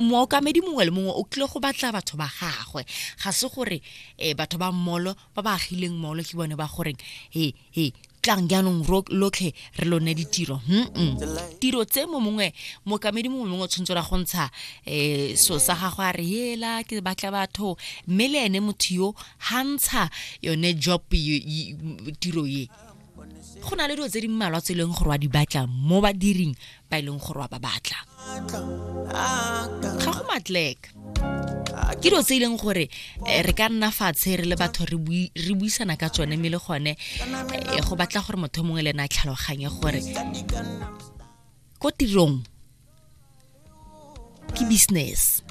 mookamedi mongwe le mongwe o tlile go batla batho ba gagwe ga se gore um batho ba mmolo ba ba agileng mmolo ke bone ba goreng he he tlang jaanong lotlhe re lone ditiro mm tiro tse mo mongwe mookamedi mongwe mongwe o tshwanetse ra go ntsha um so sa gagwe a re ela ke batla batho mme le ene motho yo ga ntsha yone job tiro ye go na le dilo tse di mmalwa tse e leng gore wa di batla mo badiring ba e leng gore wa ba batla ga go matleka ke dilo tse e leng gore eh, re ka nna fatshe re le batho re buisana ka tsone mme le gone eh, go batla gore motho mongwe le ena a tlhaloganye gore ko tirong ke business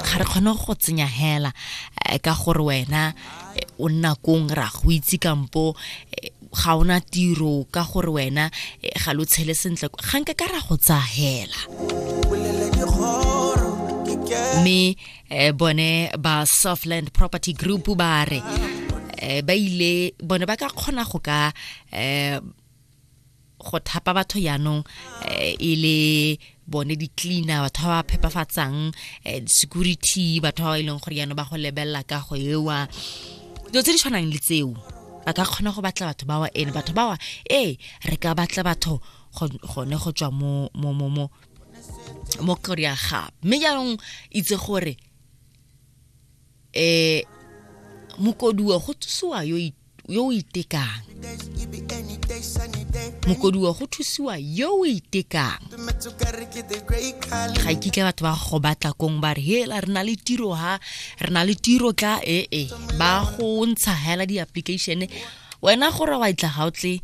ga re kgone go tsenya hela eh, ka gore wena eh, o nna kong ra go itse kampo eh, ga ona tiro ka gore wena ga lo tshele sentle ga nke ka ra go tsaya hela mme bone ba softland property group ba re ba ile bone ba ka kgona go ka go thapa batho jaanong eh, e le bone di-cleaner batho ba ba phepafatsang eh, security batho ba ba e leng gore jaanong ba go lebelela ka go ewa dilo tse di tshwanang le tseo ba ka kgona go batla batho bawa ene batho bawa ee re ka batla batho gone go tswa mo mo mo mo mo korea ga mme jaanong itse gore um mokoduwa go tsusiwa yo yo o itekang mokodiwa go thusiwa yo o itekang ga kitla batho ba go batla kong ba re hela re na le tiro ha re na le tiro tla ee eh, eh. ba go ntsha hela di-application wena gore wa itla ga o tle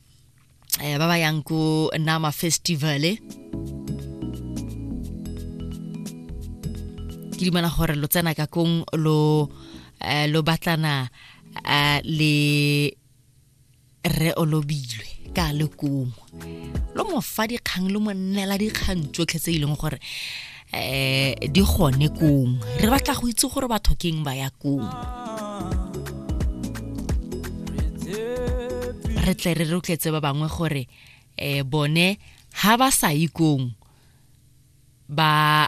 eh, ba ba yang ko nama festivale ke dumela gore lo tsena ka kong lo eh, lo batlana eh, le re olobilwe ka lekomo lo mo fa dikgang lo mo nnela dikgang tsotlhe tse e leng gore eh di gone kong re batla go itse gore batho keng ba ya kong re tle re rotletse ba bangwe gore eh bone ha ba sa yi kong ba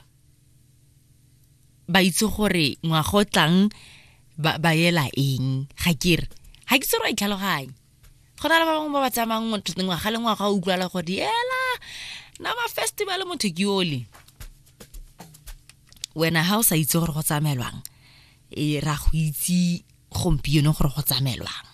ba itse gore ngwago tlang ba yela eng ga kere ga ke tsere wa itlhaloganya go na le ba bangwe ba ba tsamayang ngwaga le ngwaga o utlwala gore ela na mafestival motho ke ole wena ha o sa itse gore go tsamaelwang e ra go itse gompieno gore go tsamaelwang